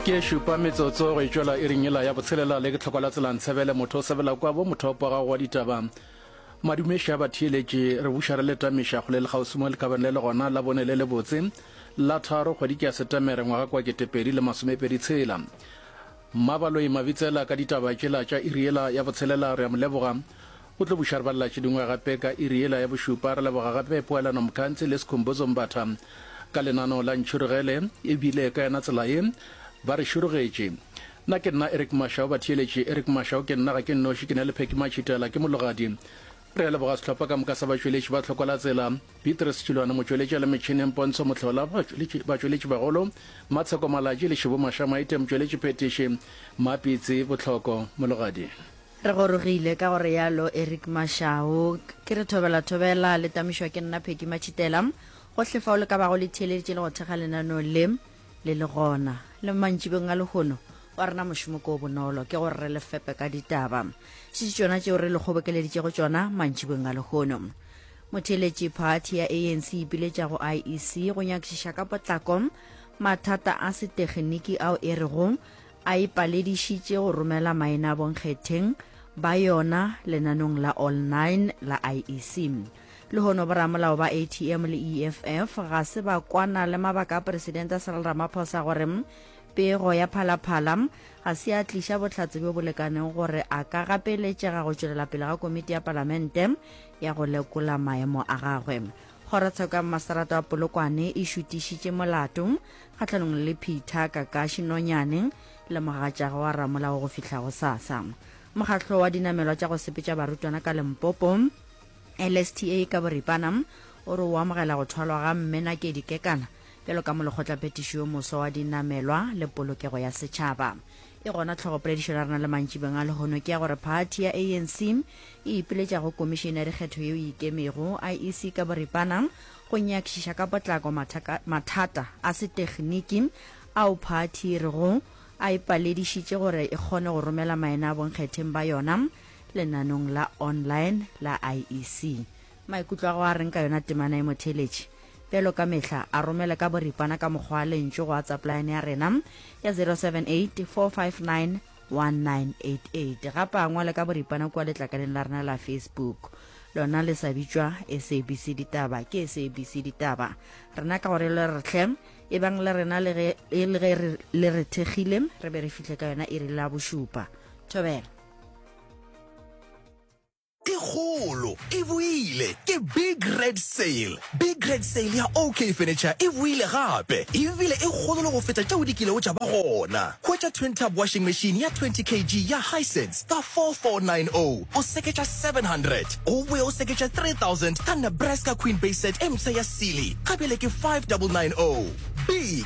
ke šupa metsotso go e tšwela e ringela ya botshelela le ke tlhoko la tselang tshebele motho o sebela kwa bo motho opo gago wa ditaba madumeša ba theeletše re buša re letamiša go le le kgauswi mo lekabane le le gona la bone le le botse la tharo kgwedi ke ya setemere ngwaga kwa ketepedi le masomepedi tshela mmabaloi mabitsela ka ditaba tšela tša iriela ya botshelela re a mo leboga O tlo buša re ba latše dingwe gape ka iri yela ya bošupa. Re leboga gape Poelano Mkhantsi le Skhumbuzo Mbatha ka lenaneo la Ntšhurugele e bile ka yena tsela ye ba re šurugetše. Na ke nna Eric Mashau batheeletše Eric Mashau ke nna ga ke nnoši ke na le Phecky Matšhitela ke mologadi. Re a leboga sehlopha ka moka sa batšweletši ba Tlhokola Tsela, Beatrice Tšilwane motšweletši a le metšhineng, Pontsho Mohlola batšweletši batšweletši bagolo, Matsheko Malatji le Shibu Mashamaite motšweletši phethiši, Mapitsi Botlhoko mologadi. Re gorogile ka go realo Eric Mashau. Ke re thobela thobela, le tamišwa ke nna Peggy Matšhitela. Gohle fao le ka bago le theeleditše le go thekga lenaneo le, le le gona. Le mantšibeng a lehono, wa rena mošomo ke o bonolo, ke gore re le fepe ka ditaba. Šetše tšona tšeo re le kgobokeleditšego tšona mantšibeng a lehono. Motheeletši, Phathi ya ANC e ipiletša go IEC go nyakišiša ka potlako mathata a setegeniki ao e rego a ipaledišitše go romela maenaabonkgetheng ba yona lenanong la All Nine la IEC. Lehono boramolao ba ATM le EFF ga se ba kwana le mabaka a Presidente Cyril Ramaphosa gore pego ya phalaphala ga se ya tliša bohlatse bjo bo lekanego gore a ka gapeletšega go tšwelela pele ga komiti ya Palamente ya go lekola maemo a gagwe. Kgorotsheko ya Mmaserato wa Polokwane e šutišitše molato kgahlanong le Peter Kakashi Nonyane le mogatšage wa Ramola wa go fihla go sasa. Mokgahlo wa dinamelwa tša go sepetša barutwana ka Limpopo, LSTA ka boripana, o re o amogela go thwalwa ga Mme Nakedi Kekana bjalo ka molekgotlaphethiši yo moswa wa dinamelwa le polokego ya setšhaba. Ke gona tlhogopoledišo ya rena le mantšibeng a lehono ke ya gore phathi ya ANC e ipiletša go Komišene ya Dikgetho yeo e Ikemego, IEC, ka boripana go nyakišiša ka potlako mathata a setekniki ao phathi e rego a e paledišitše gore e kgone go romela maena a bonkgetheng ba yona lenanong la online la IEC. Maikutlo a gago a reng ka yona temana ye, motheeletši? Bjalo ka mehla, a romele ka boripana ka mokgwa wa lentšu go WhatsApp line ya rena ya 0784591988. Gape a ngwale ka boripana kua letlakaleng la rena la Facebook, lona le sa bitšwa SABC Ditaba, ke SABC Ditaba. Rena ka gore le re hle, e bang le rena le ge e le ge re le re thekgile, re be re fihle ka yona iri la bošupa. Thobela. e kgolo e boile ke big red sale big red sale ya ok furniture e boile gape ebile e kgolo le go feta tšeo di kilego tša ba gona hwetša twin tub washing machine ya 20 kg ya hisense ka 4490 o seketša 700 o boe o seketša 3000 ka nebraska queen bay set e mpsha ya sealy ka bjale ke 5990 big